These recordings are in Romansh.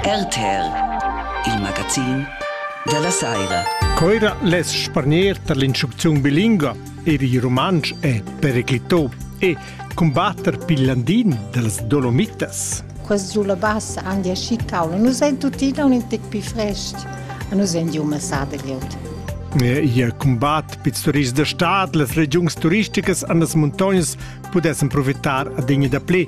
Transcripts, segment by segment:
RTL, il magazin della saira. Coira les spargner tar l'instrucziun bilingua er il rumantsch è periclitò e combatter piglandin dals dolomitas. Quest sulla bassa han die Schickau. Nus ein tuttina un in tec più frest. Nus ein di uma sada geld. Ihr combat pits turists da stad, las regiuns turisticas an las muntognas pudessan profitar a degna da ple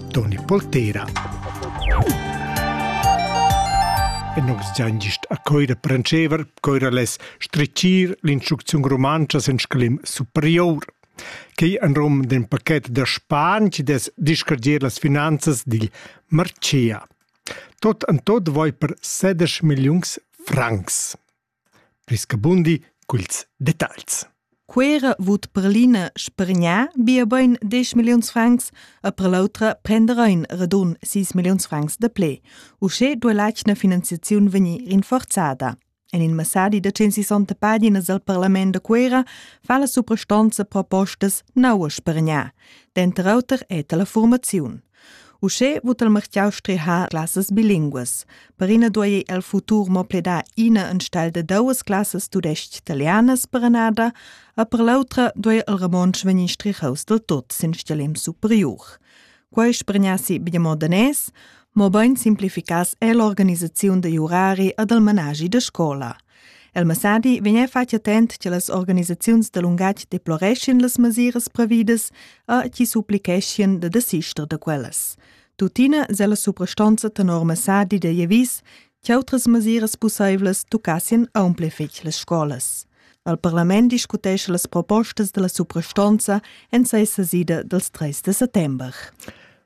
Toni Poltera. E nus giain gist a coira prancever, coira less stricir l'instrucziun rumantscha sen sclim superior. Quei en rum d'un paquet da Span che des discargier las finanzas digl Marcea. Tot en tot voi per 16 millions francs. Pli scabundi culs detagls. Cuera vut per l'ina spergnar bia bein diesch milliuns francs e per l'autra prender ein radun sis milliuns francs de ple. Uschè duo l'atgna finanziaziun vegnir rinforzada. En in messadi da 160 paginas al parlament da Cuera fa la suprastanza propostas naua spergnar. Denter auter è la formaziun. Uschè vut il martiau strehar classas bilinguas. Per ina duei el futur mo pledar ina enstell de duas classas tudestg-italianas per annada, a per l'autra duei il romontsch vegnir strichaus del tot sin stelem superior. Quei spregnassi bia mo danès, mobein simplificas è l'organisaziun degli orari e del managi de scola – El messadi vegneva fatg attent che las organisaziuns da lungatg deploreschien las mesiras previdas a chi supplicheschien da desister da quellas. Tuttina se la suprastonza tenor messadi da Jevis che outras mesiras pussaivlas tucassien aumple fich las scolas. Al parlament discutesce las propostas della suprastonza en sei sesida dels 3 de settember.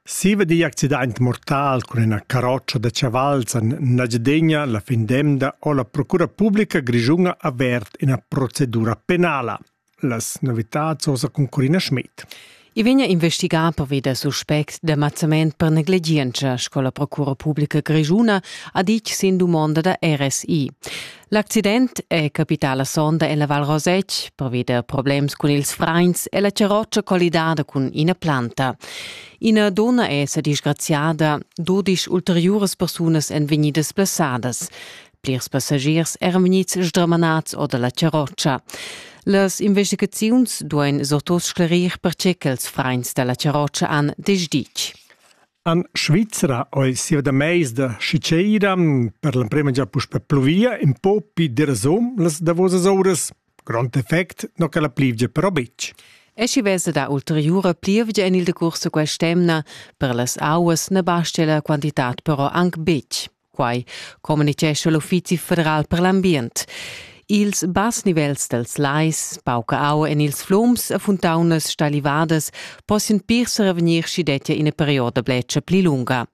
Siva digl accidaint mortal cun üna carrotscha da chavals en Engiadegna la fin d'emda ho la Procura publica grischuna avert üna procedura penala. Las novitats hosa cun Corina Schmidt. I vegna investigà pervi da suspects d'amazzament per negligientscha, sco la Procura publica grischuna ha ditg sin dumonda da RSI. L'accident è capità la sonda en la Val Rosetg pervi da problems cun ils frains e la charrotscha collidada cun ina planta. Ina donna è sa disgraziada, dudisch ulteriuras persunas èn vegnidas blessadas. Plirs passagiers eran vegnids sdramanads or da la charrotscha. Las investigaziuns duain surtut sclerir pertge ch'ils frains da la charrotscha han desditg. En Svizra ei siu da meisda schi tscheira per l'emprema gia puspe pluvia in po pi derasum las davosas uras. Grond effect no che la plivgia però betg. E schi vesa da ulteriura plievgia en il decurs da quest'emna, per las auas ne basta la quantitat però anc betg. Quai communitgescha l'Uffizi federal per l'ambient. Ils bass nivels dels lais, pauca aua en ils flums e fontaunas stalivadas possian pir revegnir schi dettia ina perioda bletscha pli lunga.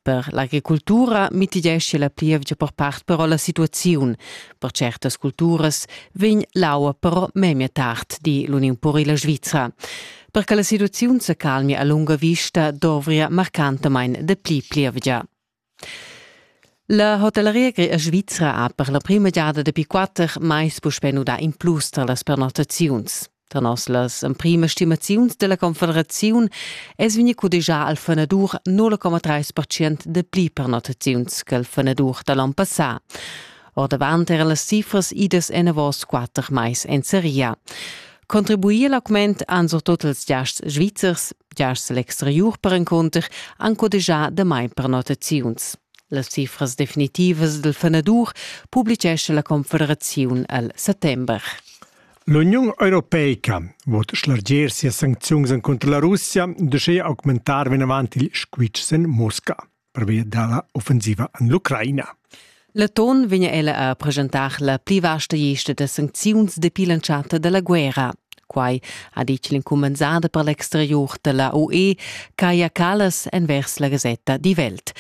Per l'agricultura mitigescha la plievgia per part però la situaziun. Per certas culturas vegn l'aua però memia tard, di l'Uniun Purila Svizra. Per che la situaziun se calmi a lunga vista dovria marcantamain de pli plievgia. La hotelleria grea svizra ha per la prima giada dapi quatter mais puspè nudà in plus tar las pernottaziuns. Tar noss las emprimas stimaziuns della Confederaziun es vegni cudegià al fenadur 0,3% de pli pernottaziuns che il fenadur da l'on passà. Ordavant era las cifras idas enavos quatter mais en seria. Contribuir l'augment han surtut ils giasts svizzers, giasts l'exteriur perencunter, anco deja damai prenotaziuns. Las cifras definitivas del fenadur publicescha la Confederaziun al settember. L'Uniun Europeica vot schlarger sia sancziuns contro la Russia, de schei augmentar venavant il squitschen Mosca. pervia dalla offensiva en l'Ucraina. Leton vegn ella a presentar la pli vasta gesta da sancziuns dapi l'entschatta dalla guerra. Quai ha ditg l'incumbensada per l'exterior da la UE, Kaja Kallas, envers la gasetta Die Welt.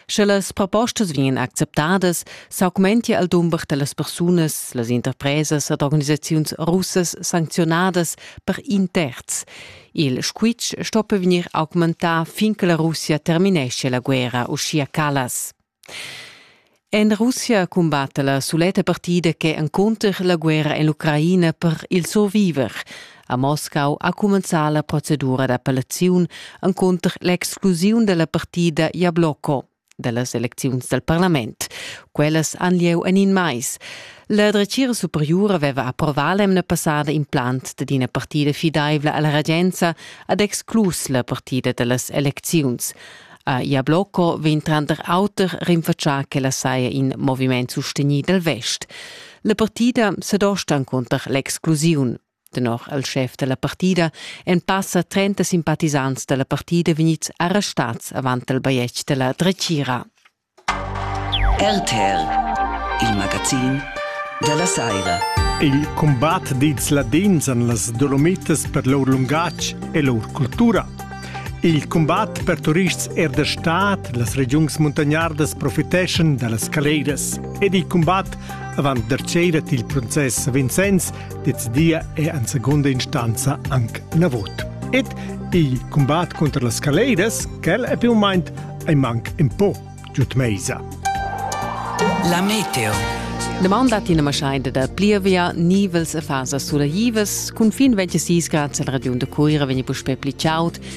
Sche las propostas vegnan acceptadas, s'augmentia il dumber da las persunas, las interpresas ed organisaziuns russas sancziunadas per in terz. Il squitsch stoppa vegnir augmentà fin che la Russia terminescia la guerra, uschia Callas. En Russia cumbatta la suletta partida che encunter la guerra en l'Ucraina per il surviver. A Moscau ha cumenzà la procedura d'appellaziun encunter l'exclusiun dalla partida Jablocco. dellas elecziuns dal parlament. Quellas han lieu en in mais. La dretgira superiura aveva approvà l'emna passada implant dad ina partida fidaivla alla regenza ad exclus la partida dellas elecziuns. A Jablocco vegn tranter auter rinfatschà ch'ella saja in moviment sustegnì dal vest. La partida sa dostan cunter l'exclusiun. Tenor il schef dalla partida èn passa 30 simpatisants dalla partida vegnids arrestads avant il bajetg dalla dretgira. RTR, il magazin dalla Saira. Il combat dils Ladins en las Dolomitas per lur lungatg e lur cultura. Il combat per turists er der Staat, las regiuns muntagnardas profiteschan da las caleras ed il combat avant der cera il process a Vincenz decidia è en seconda instanza anc navot. Ed il combat contra las caleidas, quel è più o meno ei manc un po giut meisa. La meteo. Demanda tina maschaida da plievia, nivels e fasa sulla Ivas, cun fin 26 grad la regiun de Cuira vegni puspe pli chaud,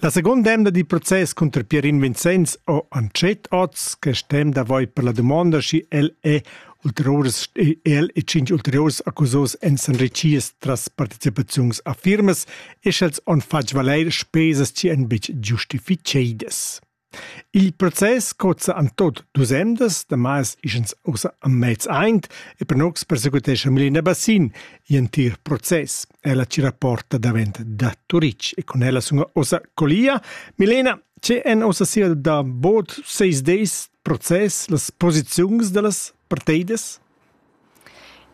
La segunda emda dil process cunter Pierin Vincenz ho antschet oz quest temps davoi per la dumonda schi el e ulteriurs el e cinc ulteriurs accusos en s'enrichies tras participaziuns a firmas e sch'els han fatg valer spesas chi èn betg giustificedas. Il process cozza en tut dus emdas, damas ischans ussa a mez aint e panox persequitescha Milena Bassin gl'entir process. Ella ci rapporta davent da Turic e con ella sunga ossa colia. Milena, ce en ossa sia da bod seis deis process, las posiziuns dellas parteidas?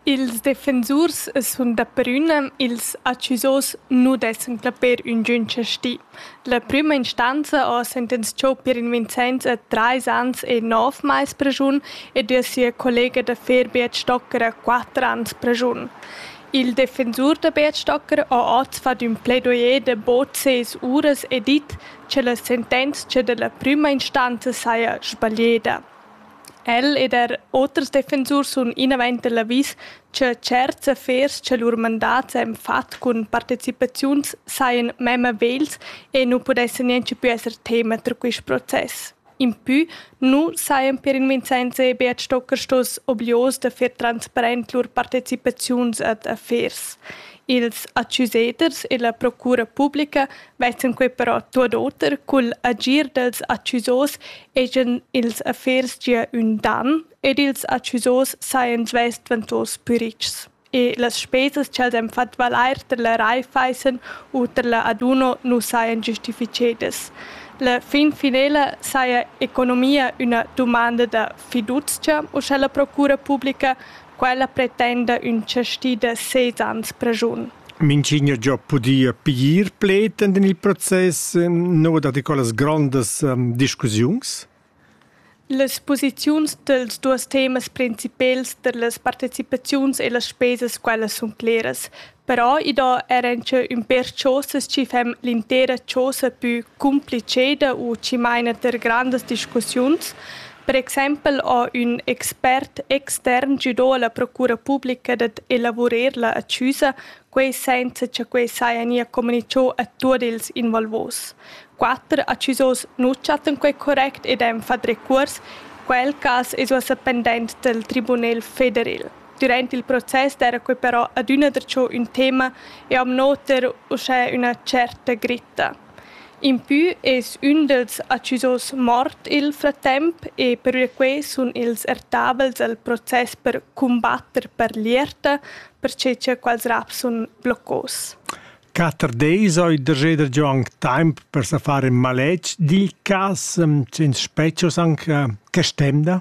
Ils defensurs sun da prüna ils accusos nu d'esser clapper üngün chastì. La prüma instanza ho sentenzchà Pierin Vincenz a trais ans e nov mais praschun ed er sia collega da fer Beat Stocker a quatter ans praschun. Il defensur da Beat Stocker ho oz fat ün plaidoyer da bod ses uras e dit cha la sentenzcha da la prüma instanza saja sbaglieda. El ed er oters defensurs sun inavant da l'avis cha tscherts affers cha lur mandats han fat cun partecipaziuns sajan memma vegls e nu pudessan nianche plü esser tema ter quist process. Impü nu sajan per invinzenza e Beat Stocker stos oblios da fer transparent lur partecipaziuns ad affers. Ils accusaders e la procura publica Vezzen quei però tuot oter cul agir dels accusos ejan ils affers gia ün dan ed ils accusos sajan svess dvantos pü richs. E las spesas cha'ls han fat valair tar la Raiffeisen u tar la Aduno nu sajan giustifichedas. La fin finela saja economia üna dumanda da fiduzcha, uschè la procura publica, quella pretenda ün chasti da ses ans prajun. Minch'igna giò pudia piglier pled ed in il process nouda da quellas grondas discussiuns. Las posiziuns dels duos temas principels per las partecipaziuns e las spesas quellas sun cleras, però i do eir auncha ün pêr chosas chi fan l'intera chosa pü cumpliceda u chi maina ter grandas discussiuns, Per exempel ha ün expert extern güdà alla procura publica dad elavurer la accusa, quai senza cha quai saja gnir comunichà a tuot ils involvos. Quatter accusos nu chattan quai correct ed han fat recuors. Quel cas es uossa pendent dal Tribunel federal. Durant il process d'eira quai però adüna darcho ün tema e am noter uschè üna tscherta gritta. Impü es ün dals accusos mort i'l frattemp e pervia quai sun ils ertabels al process per cumbatter per l'ierta, perche cha quels raps sun bloccos. Quatter deis ho il dreseder Gion taimp per sa far ün maletg digl cas, senza spezchos anche, che stemda?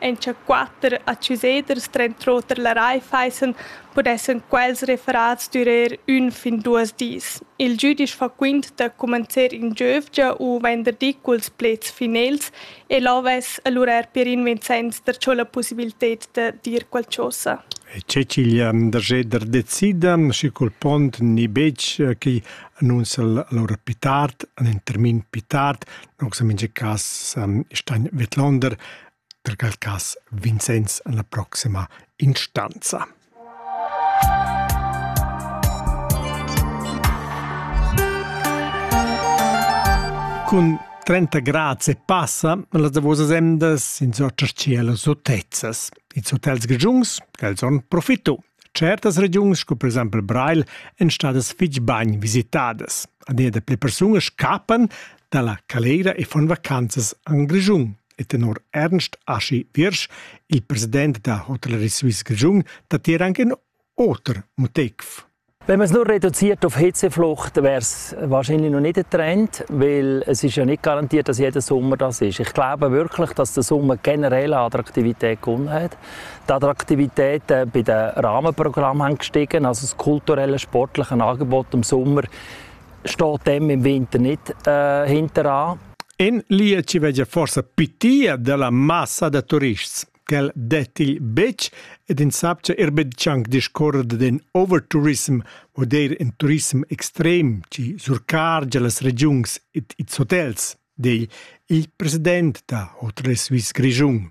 Encha quatter accuseders trent'oter la Raiffeisen pudessan quels referats durer ün fin duos dis. Il giüdisch fa quint da cumanzer in giövgia u venderdi culs pleds finels e là vess alura Pierin Vincenz darcho la pussibilted da dir qualchosa. C'è ch'igl Andrgeder decida, schi cul pont ni betg, chi annunza lur pitat, un termin pitat, Aunc in mintga cas san Stein vidlonder per quel cas Vincenz en la proxima instanza. Cun 30 grads e passa las davosas emdas in sortas cielo sotezzas. Ils hotels grigiuns, quels on profitu. Certas regiuns sco per exempel Breil èn stadas fitg bain visitadas. Adina pli persunas scappan dalla calera e fan vacanzas en Grischun. E tenor Ernst Aschi Wirsch, il president da Hotellerie Suisse Grischun, dat hier anche ein oter Motiv. Wenn man es nur reduziert auf Hitzeflucht, wäre es wahrscheinlich noch nicht ein Trend, weil es ist ja nicht garantiert, dass jeder Sommer das ist. Ich glaube wirklich, dass der Sommer generell an Attraktivität gewonnen hat. Attraktivitäten bei den Rahmenprogrammen haben gestiegen. Also das kulturelle, sportliche Angebot im Sommer steht dem im Winter nicht äh, hinter an. In Lie ci veggia forse pitia della massa da turists. Quel dettigl betg ed in sapcia er betg anc discorrere den overtourism o der in turism extrem ci surcargia las regiuns et its hotels, di il president da Hotel Suisse Grischun.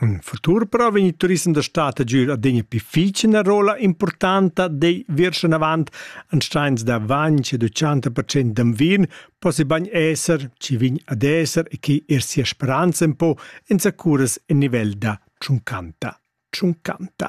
In futur però vegn il turissem da stad a giur adina più fitg ina rolla importanta dei virschen avant ansteins da 20 e 80% d'anvin possi bagn esser ci vign ad esser e chi er sia speranza un po in sacuras in nivel da tschuncanta. Tschuncanta.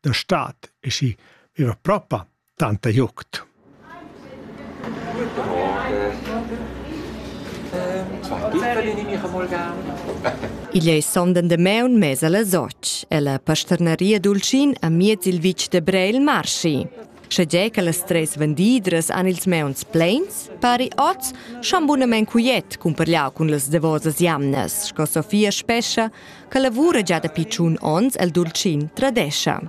da stad e schi viva propa tanta jucht. Guten Morgen. Ähm, zwei Bitter, die nehme ich einmal gerne. Igl ei sonden de meun mesa la soc, e la pasternaria Dulcin a miez il vitg de Breil marschi. Sche ge che las tres vendidras han ils meuns pleins, pari oz schon bunamen cuiet cumparliau cun las devosas jamnas, sco Sofia Spescha che lavura già dapi tschun onns el Dulcin Tradescha.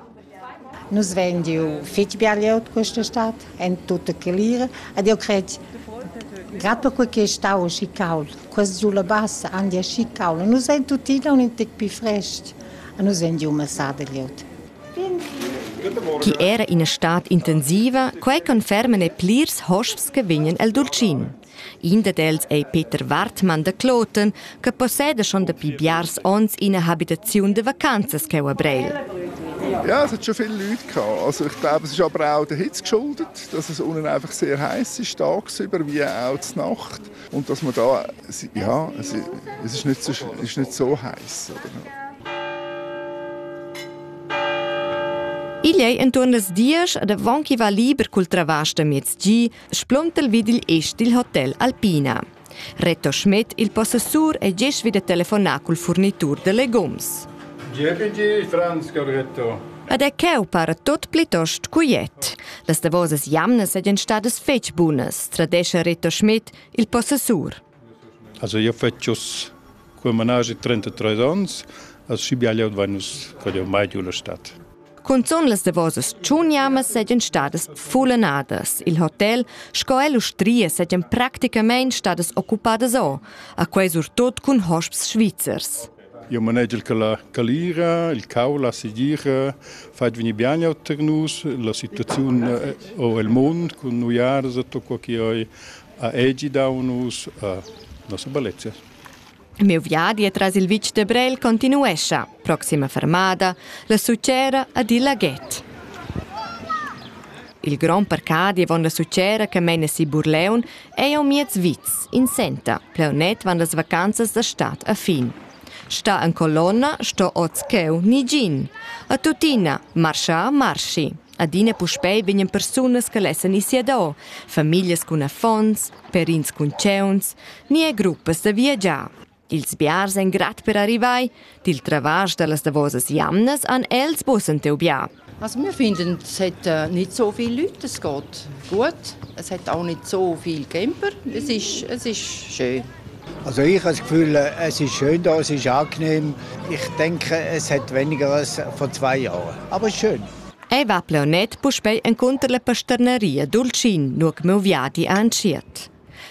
Nus vein giu fetg bia от questa stad, en tutta clear, ed io cred Gerade per quel stau schi caul, quest sulla bassa an dir schi caul, nus ein tuttina un in tec più frest, nus ein giu massada liot. Chi era ina stad intensiva, quei conferma ne plirs hosps che vegnan el Dulcin. In dad els ei Peter Wartmann da Kloten, che posseda schon dapi biars onns ina habitaziun de vacanzas cheu a Breil. Ja, es hat schon viele Leute gehabt. Also ich glaube, es ist aber auch der Hitze geschuldet, dass es unten einfach sehr heiß ist tagsüber, wie auch die Nacht. Und dass man da, ja, es ist nicht so, ist nicht so heiß. Oder? Igl ei entuorn las diesch ed avon ch'i va liber cul travasch da miez gi spluntel vid il ist dil hotel Alpina. Reto Schmidt, il possessur, è gest vid telefonar col furnitur de legums. GPG Franz Corretto. Ed è cheu para tot plitost cuiet. Las davosas jamnas ed en stadas fetg bunas, tradesce Reto Schmidt, il possessur. Also io fetsch uss cul managi 33 ons, als schibiaglio vain nus cod eau mai giù la stad. Cunzun las davosas tschuniamas seigien stadas fullenadas. Il hotel sco e l'ustria seigien practicamein stadas occupadas o, a quei surtut cun hosps svizzers. Io manegel che la calira, il cau, la sigira fat veni bene a nus, la situazione o el mund cun nuiars e tutto quo che oi ha ei gidau nus a nossa bellezia. Il miu viadi tras il vitg de Brel continuescha. Proxima fermada, la succera ad il laghet. Il grond parcadi avon la succera che meina si Burleun ei au miez vits, in senta, pleunet van las vacanzas da stad a fin. Sta en colonna sto oz cheu ni gin. A tuttina, marscha, marschi. Adina puspei vegnan persunas che lessan ir siador, famiglias cun affons, perins cun tgeuns, ni er gruppas da viagiar. Ils biars ein grad per arrivar. Dil travasch dallas davosas jamnas han els bussen teu bia. Also wir finden, es hat äh, nicht so viele Leute, es geht gut. Es hat auch nicht so viel Camper. Es ist, es ist schön. Also ich habe das Gefühl, äh, es ist schön da, es ist angenehm. Ich denke, es hat weniger als vor zwei Jahren. Aber schön. Ei va plaunet puspei encunter la pasternaria Dultschin, nua che meu viadi ha entschiet.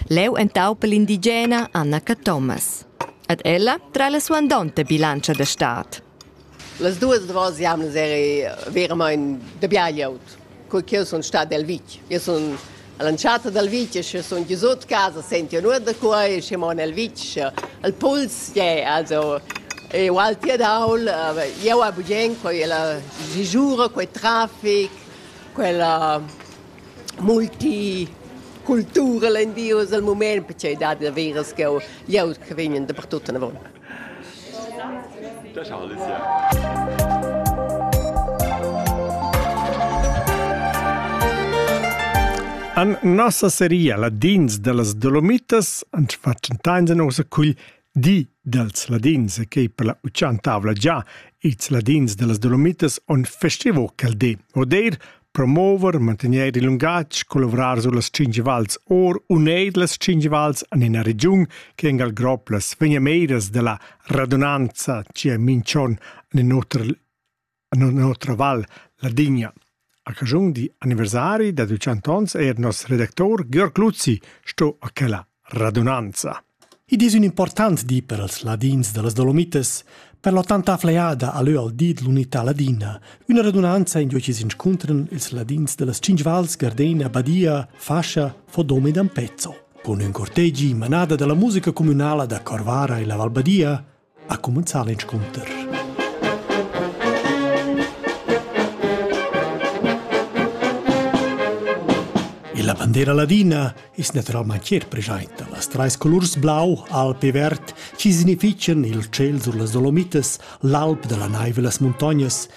Leu entaupa l'indigena Anna Cathomas. Ed ella trai la suandonta bilantscha da stad. Las duas duas jamnas eri veramein de bia glieud, cur che jeu sun stat el vitg. Jeu sun All'entschatta dal vitg sche sun gnü sut casa, sentiun our da qua e schi mon al vitg, al puls, yeah, also eu alti ed aul, ieu a Bugen quella sisura, quel trafic, quella multicultura, len Dios al mumaint, perche i dat da veras ch'eu, ieu che vegnan dapertut anavon. Da Charles, An nossa seria Ladins de las Dolomitas ans fatschentains en osa cugl di dels Ladins, che per la uchan tavla già ils Ladins de las Dolomitas on festivo quel di, odeir promover, mantegnair il lungatg, collavrar sullas tschintg vals or u neir las tschintg vals en ina regiun che engal grob las vegnameras della radunanza cia minchon en otra, en otra val, la Digna. A cagiun di anniversari da 200 ans er nos redactor Georg Luzzi sto a quella Radunanza. Id es ün important di per els ladins da las Dolomitas, per l'ottanta fleada a lö al di d'l'unità ladina. Üna radunanza in due chi s'inscuntran ils ladins da las Cinc Vals, Gardena, Badia, Fascia, Fodom ed Ampezzo. Con ün cortegi, manada da la musica cumünala da Corvara e la Val Badia, ha cumenzà l'inscunter. E la bandera ladina es naturalmain chier preschainta. Las trais colurs blau, alb e verd chi signifitschan il tschel sur las Dolomitas, l'alp da la naiv e las muntognas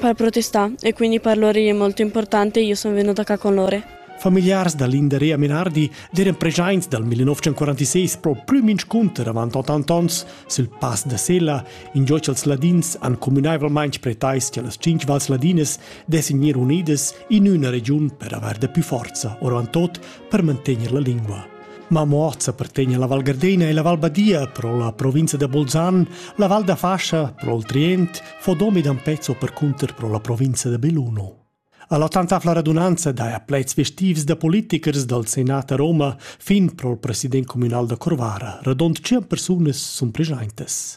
Per protestar e quindi per loro è molto importante, io sono venuta qua con loro. Familiars da Linderea Menardi d'eran preschaints dal 1946 pro plü minscunter avant 80 ons sul pass da Sella, ingio ch'els ladins han communaivelmaing pretais cha las cinque vals ladinas dessin gnir unidas in üna regiun per avair da più forza, ora en tot per mantegner la lingua. Ma Muorz appartegna alla Val Gardena e la Val Badia pro la provincia da Bolzan, la Val da Fascia pro il Trient, fo domi dan pezzo per cunter pro la provincia da Belluno. All'ottantavla radunanza dai a plaids festivs da politikers dal Senat a Roma fin pro il president communal da Corvara, radont 100 persunas sun preschaintas.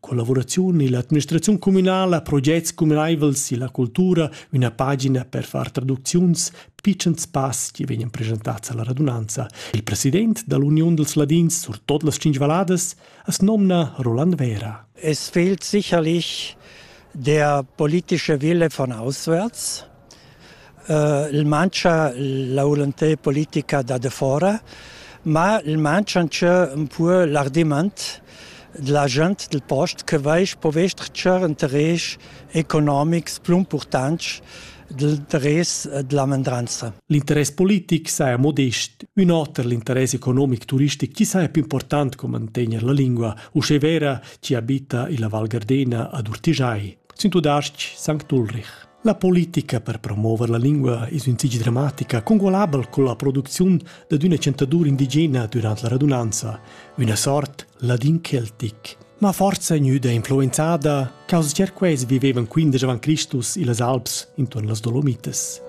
Collavuraziun illa administraziun cumünala, progets cumünaivels illa cultura, üna pagina per far traducziuns, pitschens pass chi vegnan presentats alla radunanza. Il president da l'Uniun dels Ladins sur tot las Cinc Valladas as nomna Roland Vera. Es fehlt sicherlich der politische Wille von auswärts il mancha la volontà politica da defora, ma il mancha ancheu ün po l'argumaint della gent del post che vaisch po vestger interess economics plü importants l'interess della mendranza. L'interess politic saja modest, ün oter l'interess economic turistic chi saja più important co mantegner la lingua, uschè vera chi abita illa Val Gardena ad Urtigiai. Sin tudasc Sankt Ulrich. La politica per promover la lingua es ün fich dramatica, congualabel con la producziun dad üna chantadur indigena dürant la radunanza, üna sort ladin celtic. Ma forza gnüda influenzada, causacher quels vivevan quindesch avant Cristus illas Alps intuorn las Dolomitas.